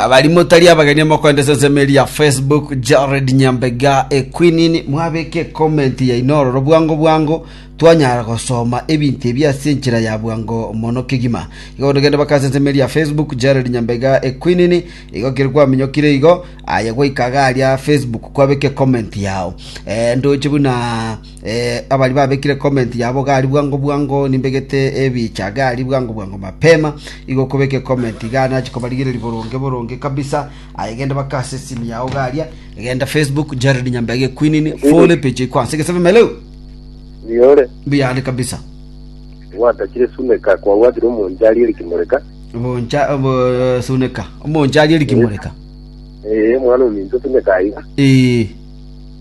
abarimo tari abageni mokoenda ase ensemo eria ya facebook jared nyambega equinini mwabeke comment yaino ororo bwango bwango twanyara gosoma ebinto ebi ase enchera ya bwango mono kegima igo bono genda baka ase ensemo eria ya facebook jared nyambega equinini igo kere kwaminyokire igo aye gwaika iga aria facebook kwabeke comment yao eh, ndoche buna Abaria babekire comment yabo gari bwango bwango nimbegete ebicha gari bwango bwango mapema igo okobeka ecomment iga nachi kobarigereria boronge boronge kabisa aye genda baka ase esimu yao garia genda facebook Jared Nyambege Quinini fole page iko ase gesebe meleo Yore. biyane kabisa Gwatakire suneka kwagwatire omonche arie rikimoreka. boncha bo- suneka omonche arie rikimoreka Eh, mwana ominto suneka aiga. eh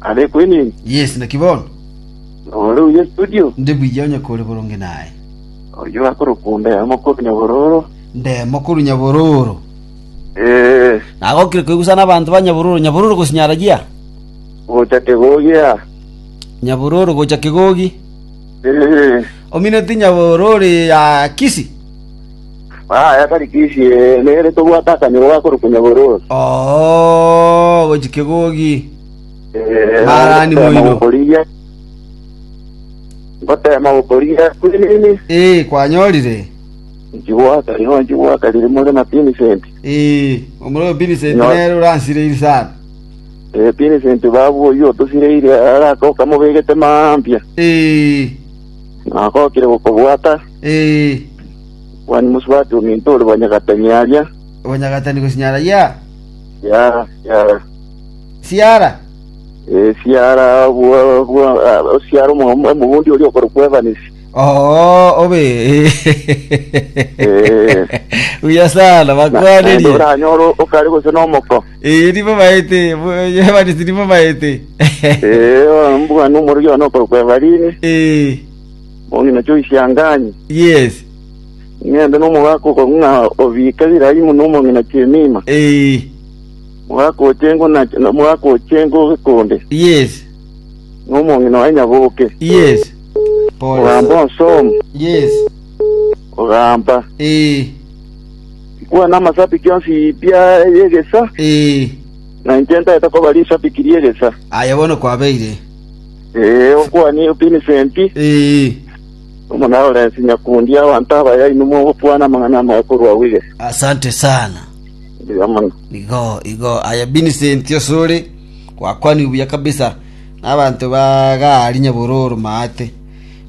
Are kwenene. Yes, naki bono. Ore uye studio. Ndi buya onye kore boronge naye. Oyo akorokwa onde mokoru nyabororo. Nde mokoru nyabororo. Eh. Nagokire koigusa na abantu ba nyabororo. Nyabororo gosinyara gia. Gocha kegogia. Nyabororo gocha kegogi. Eh. Omineti nyabororo ya kisi. Aya tari Kishi, nere tobwate akanyoro gakorukunya bororo. Oo, gochi kegogi. Eh, Barani ngotema moino. gokorigia. Ngotema gokorigia kwinini. Ee, kwanyorire. Nchibwata, yo nchibwata riri more na Vincent. Ee, omororo Vincent Nyo- nere oransireiri sana. Eh, Vincent babu oyo otosireire araka okamobegete mambia. Ee, Nakokire gokobwata. Ee, Mwanyi mosubati ominto ore bwanyagatani aria. obonyagatani gosinyara ya Siara, siara. siara. Eh, siara bwa bwa ah, siara omo- omobundi oria okorokwa Evans. Oo, obe. Eh. Buya sana, Na- naende bakwanerie. oranyore okare gose nomoko. Ee, nibo baete, Evanisi nibo baete. Eh, mbwana omorori one okorokwa Evarini. Ee, Moni nachio oisianganye. Yes. Ng'ende nomogaka okorwa ng'a obiike Ibirahimu nomong'ina chi'emiima. Eh. Mogaka oche engo na na mogaka oche engo gekonde. Yes. Nomong'ina waye nyaboke. Yes. Pole. Ogamba onsomu. Yes. Ogamba. Eh. Kwana amasabiki yonsi ipia y'egesa. Eh. Na inche ntaete kobaria esabiki ri'egesa. Aye bono kwabeire. Ee, okwane Vincent, Ee, omo na Lawrence nyakundi abanto abaya inwe mogokwana amang'ana amaya korwa Wige. asante sana. Mbuya mono. Igo, igo. Aya Vincent osore, gwakwaniwe buya kabisa. Nabanto ba gari nyabororo maate.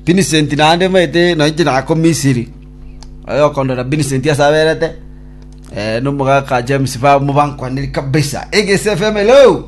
Vincent naende maete nainche nako Misiri. Oyo okondora Vincent ase aberete. Eh, nomogaka James ba mobankwanire kabisa. Egese FM hello.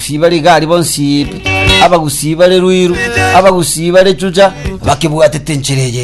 Abagusii bare igari bonsi, abagusii bare ruiru, abagusii bare chucha, bakebwatete enchera eye.